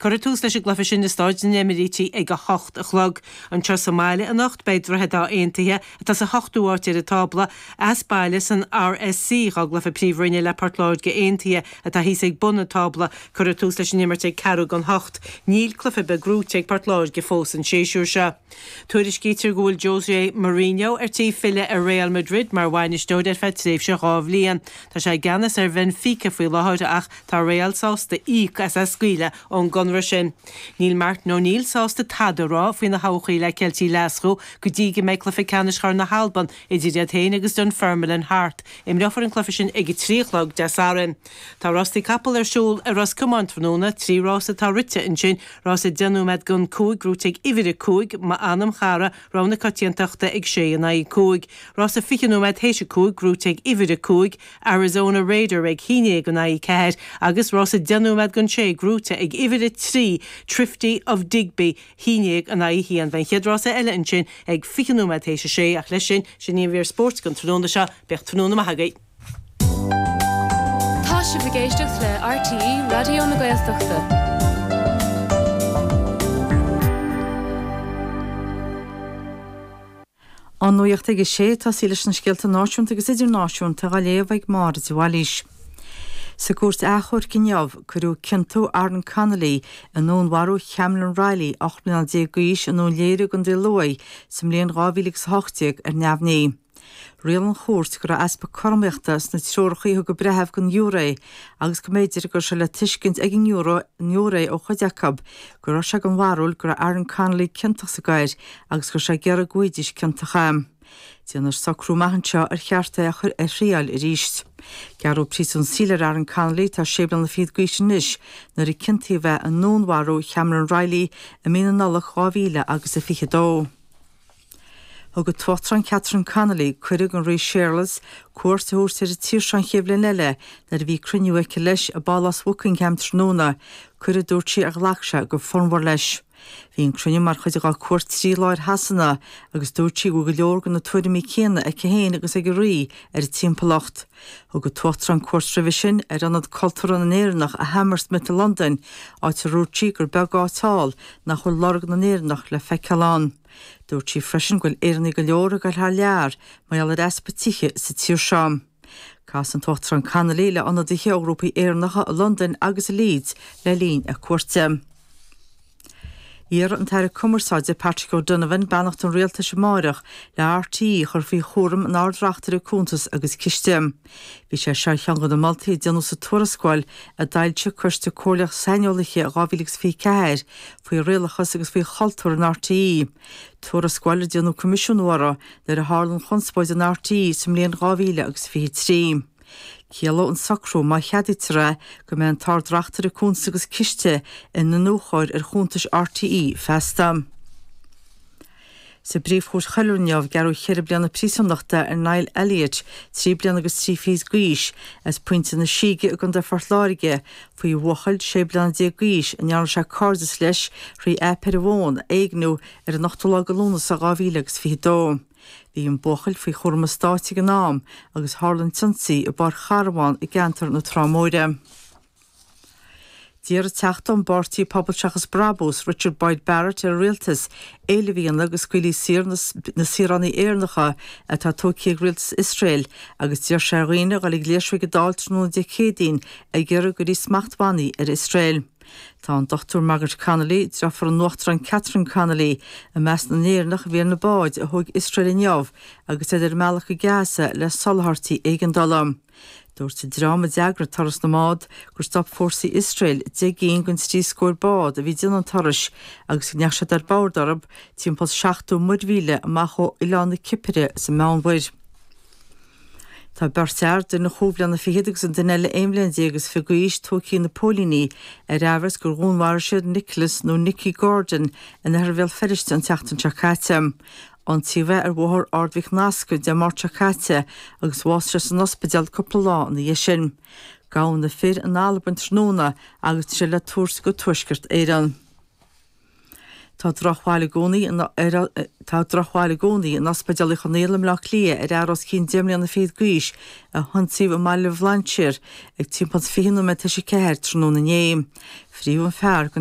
Cuireadh tús leis an gcluiche sin i Stáid na nEimirítigh ag a hocht a chlog. Anseo sa mbaile anocht beidh Droichead Átha Aontaithe, atá sa hochtú áit ar an tábla, as baile san RSC, dhá gcluiche Príomhroinne le Port Láirge Aontaithe, atá thíos ag bun an tábla. Cuireadh tús leis an imirt ag ceathrú gan hocht. Níl cluiche ar bith gnóite ag Port Láirge fós an séisiúr seo. Tuairiscítear go bhfuil José Mourinho ar tí filleadh ar Real Madrid mar bhainisteoir ar feadh tréimhse dhá bhliain. Tá sé i gceannas ar Bhenfica faoi láthair ach tá Real sásta íoc as é a scaoileadh ón gconradh sin. Níl Martin O'Neill sásta tada a rá faoina thodhchaí le Ceiltigh Ghlaschú go dtí go mbeidh cluiche ceannais Chorn na hAlban idir iad féin agus Dunfermline thart. Imreofar an cluiche sin ag a trí a chlog Dé Sathairn. Tá rástaí capall ar siúl i Ros Comáin tráthnóna, trí rás atá rite ansin, rás a deich nóiméad gan cúig, gnóite ag uimhir a cúig, M'anam Chara, rogha na coitiantachta ag sé in aghaidh a cúig, rás a fiche nóiméad théis a cúig, gnóite ag uimhir a cúig, Arizona Raider ag a haon déag in aghaidh a ceathair agus rás a deich nóiméad gan sé, gnóite ag uimhir a trí, Thrifty of Digby a haon déag in aghaidh a haon. Beidh an chéad rás eile ansin ag fiche nóiméad théis a sé ach leis sin, sin í an mhír spóirt don tráthnóna seo, bíodh tráthnóna maith agaibh! Tá sibh ag éisteacht le RTÉ Raidió na Gaeltachta. An Nuacht ag a 6, tá sí leis na scéalta náisiúnta agus idirnáisiúnta dhá léamh ag Máire de Bhailís. Sa Cúirt Achomhairc inniu, cuireadh ciontú Aaron Connolly i ndúnmharú Chameron Reilly, 18 mbliana d'aois, i nDún Léire i gContae Lú sa mbliain 2018 ar neamhní. Rialaigh an Chúirt go raibh easpa cothromaíochta sna treoracha a thug an breitheamh don ghiúré agus go mb'fhéidir go raibh sé le tuiscint ag an ngiúiré ó chuid acu go raibh sé den bharúil go raibh Aaron Connolly ciontach sa gcoir agus go raibh sé ag iarraidh go bhfaighidís ciontach é. Déanfar socrú amach anseo ar cheart é a chur ar thriail arís. Gearradh príosún saoil ar Aaron Connolly atá sé bliana fichead d'aois anois nuair a ciontaíodh é i ndúnmharú Chameron Reilly i mí na Nollag 2000 agus a fiche dó. Thug an tUachtarán Catherine Connolly cuireadh don Rí Séarlas cuairt a thabhairt ar an tír seo an chéad bhliain eile nuair a bhí cruinniú aici leis i bPálás Bhuckingham tráthnóna, cuireadh a dúirt sí ar ghlac sé go fonnmhar leis. Bhí an cruinniú mar chuid dá cuairt trí lá ar Shasana agus dúirt sí go bhfuil go leor de na tuairimí céanna aici féin agus ag an Rí ar an timpeallacht. Thug an tUachtarán cuairt roimhe sin ar Ionad Cultúrtha na nÉireannach i Hammersmith i Londain, áit a dúirt sí gur beag áit thall nach bhfuil lorg na nÉireannach le feiceáil ann. Dúirt sí freisin go bhfuil Éireannaigh go leor ag dul thar lear mar gheall ar easpa tithe sa tír seo. Chas an tUachtarán Connolly le ionadaithe ó ghrúpaí Éireannacha i Londain agus i Leeds le linn a cuairte. Iarrfaidh an tAire Cumarsáide Patrick O'Donovan beannacht an Rialtais amáireach le RTÉ a chur faoi chúram an Ard-Reachtaire Cuntas agus Ciste. Bhí sé seo ar cheann de na moltaí a déanadh sa tuarascáil a d'fhoilsigh Coiste Comhairleach Saineolaithe in 2024 faoi rialachas agus faoi chultúr in RTÉ, tuarascáil ar déanadh coimisiúnú uirthi nuair a tharla an chonspóid in RTÉ sa mbliain 2023. Ciallóidh an socrú, má cheadaítear é, go mbeidh an tArd-Reachtaire Cuntas agus Ciste ina iniúchóir ar chuntais RTÉ feasta. Sa bPríomhchúirt Choiriúil inniu, gearradh ceithre bliana príosúnachta ar Niall Elliott, trí bliana agus trí fichid d'aois, as Pointe na Síge i gContae Phort Láirge, faoi bhuachaill sé bliana déag d'aois a ndearna sé cairdeas leis thrí aip ar an bhfón, a éigniú, ar an ochtú lá de Lúnasa dhá mhíle agus fiche dó. Bhí an buachaill faoi chúram an Stáit ag an am, agus tharla an t-ionsaí i bpáirc charabhán i gceantar na Trá Móire. D'iarr an Teachta ón bPáirtí Pobal Seachas Brabús, Richard Boyd Barrett ar an Rialtas éileamh a dhéanamh go scaoilfí saor na saoránaigh Éireannacha atá tógtha ag Rialtas Iosrael agus d'iarr sé ar dhaoine a dhul ag léirsiú ag an Dáil tráthnóna Dé Céadaoin ag iarraidh go gcuirfí smachtbhannaí ar Iosrael. Tá an Dr Margaret Connolly, deirfiúr an Uachtaráin Catherine Connolly, i measc na nÉireannach a bhí ar na báid a thóg Iosrael inniu agus iad ar a mbealach go Gaza le soláthairtí éigeandála. Dúirt an dream a d'eagraigh turas na mbád gur stop fórsaí Iosrael deich gcinn den trí scór bád a bhí ag déanamh an turais agus go ndeachaigh siad ar bord orthu timpeall 70 muirmhíle amach ó oileán na Cipire sa Mheánmhuir. Tá beirt fhear, duine chúig bhliana fichead agus an duine eile aon bhliain déag is fiche d'aois, tógtha ag na póilíní ar aimhreas gur dhúnmharaigh siad Nicholas nó Nicky Gordon in oirthear Bhéal Feirste an tseachtain seo caite. ionsaíodh é ar Bhóthar Ard Mhic Nasca Dé Máirt seo caite agus bhásaigh sé san ospidéal cúpla lá ina dhiaidh sin. Gabhadh na fir in Albain tráthnóna agus tá siad le tabhairt go Tuaisceart Éireann. Tá drochbhail i gcónaí in Ospidéal Uí Chonghaile i mBleá Cliath ar fhear os cionn deich mbliana fichead d'aois a hionsaíodh i mBaile Bhlainséir ag timpeall is fiche nóiméad tar éis a ceathair tráthnóna inné. Frítheadh an fear go